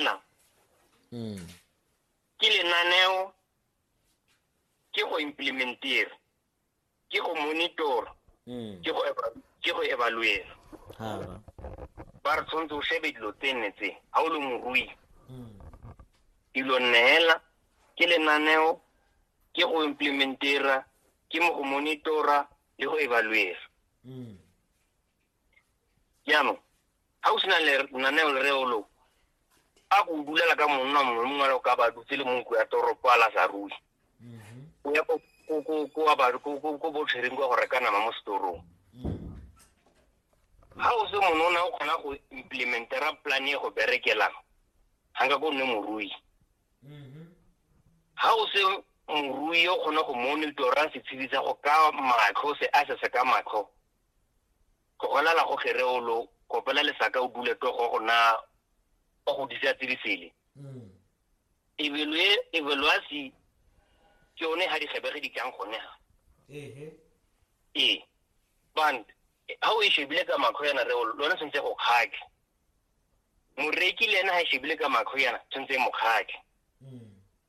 nna mm. ke lenaneo ke go implementera ke go monitor mm. ke go evaluate ba re tshwanetse o shebe dilo tse nne tse ga o le morui mm. dilo neela ke lenaneo ke go implementera ke mo go monitora le go evaluera jaanong ga o sena lenaneo le reolong a ko dulela ka monna mongwe le mongwe le ka ba dutse le monko ya toropo a la sa rui o ya ko botshwereng kwa go reka nama mo setorong ga o se monona o kgona go implementera plan e go berekelang ga nka ko nne morui ga o se morui o kgona go monitora setshedi sa go ka matlho se a se se ka matlho go gona la go kere o lo kopela lesaka o dule to go gona o go disa tsirisele mm. evelwe evelwasi ke one ha di gebege di tlang gone ha ehe e band ha o e shebile ka makho yana re lona sentse go khake moreki le ena ha e shebile ka makho yana sentse mo khake mm.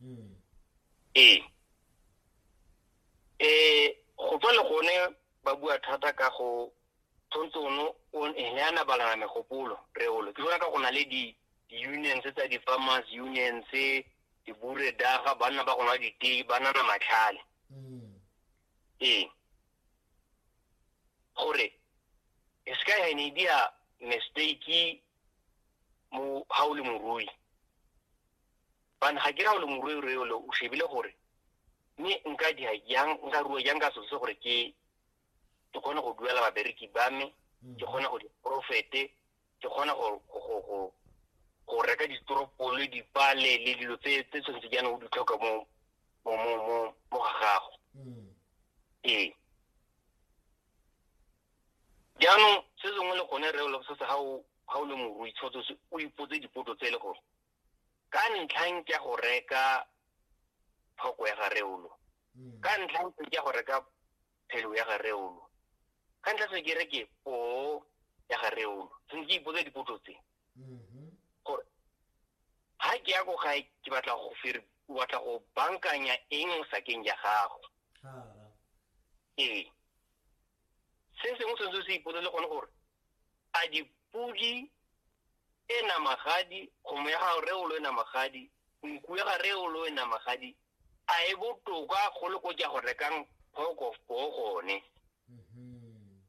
hmm. ee um go tswa le gone ba bua thata ka go tshwanetse ono ne a nabalana megopolo reolo ke bona ka go na le di-unions tsa di-farmers unions diburedaga banna ba gona ditei ba nana matlhale hmm. ee gore e se ka ya ne dia mistake mo ha o le morui bane ga ke ra ole moruerue ole o shebile gore mme nka dia yang nka rua yang ka sose gore ke ke kgone go duela babereki ba me mm. ke kgone go diprofete ke kgone go reka ditoropole dipale le dilo tse tse tshwanetse jaana o di tlhoka mo mo mo mo mo ga gago mm. ee jaanong se sengwe le gone re o le se se ga o ga o le morui tshwanetse o ipotse dipotso tse e le gore ka ntlhang ke go reka thoko ya gareolo mm. ka ntlhang ke go reka phelo ya gareolo ka ntlha se ke reke po ya gareolo se ke ipotsa dipotso tse mm-hmm. gore ha ke ya go gae ke batla go fere o batla go bankanya eng sakeng ya gago ee se sengwe se se se ipolele gone gore a dipodi e namagadi kgomo ya ga reolo e namagadi nku ya ga reolo e namagadi a e botoka go le ko ja go rekang pork of po gone mm-hmm.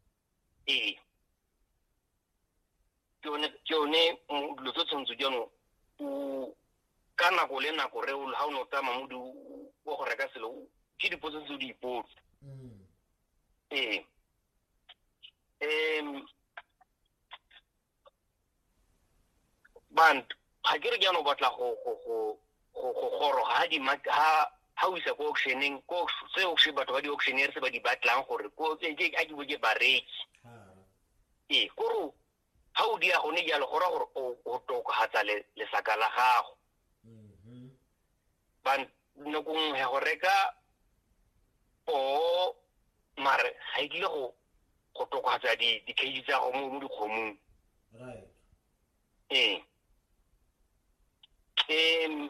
ee ke yone dilo tse tshwanetse jaanong o ka nako le nako reolo ga o ne o tsamaya mo wa go reka selo ke dipotso tse o di ipotse mm. Sí. Em, ban ga ke re ke ano batla go go go go go goro ha di ma ha ha o isa ko auctioneng ko se auction batho ba di auctioneer se ba di batlang gore ko ke a ke bo ke bareki ee koro ga o dira gone jalo go ra gore o tokagatsa lesaka la gago mm-hmm. ba nako nngwe go reka poo mare ga e tlile go go tokagatsa dikgedi tsa go mo dikgomong ee um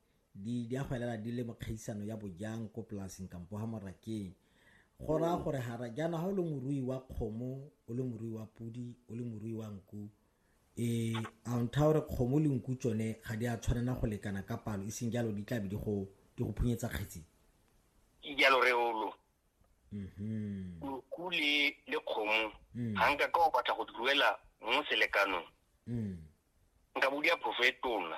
di di a go elela di le mo kgaisano ya bojang ko polaseng kampo ha morakeng go raya gore hara jaana ha o le morui wa kgomo o le morui wa pudi o le morui wa nku e a ntha gore kgomo le nku tsone ga di a tshwanela go lekana ka palo e seng jalo di tlabe di go di go phunyetsa kgetsi ke jalo re olo mhm nku le le kgomo Mm. ga nka ka o batla go di ruela mo selekanong mm nka bo di a phofo e tona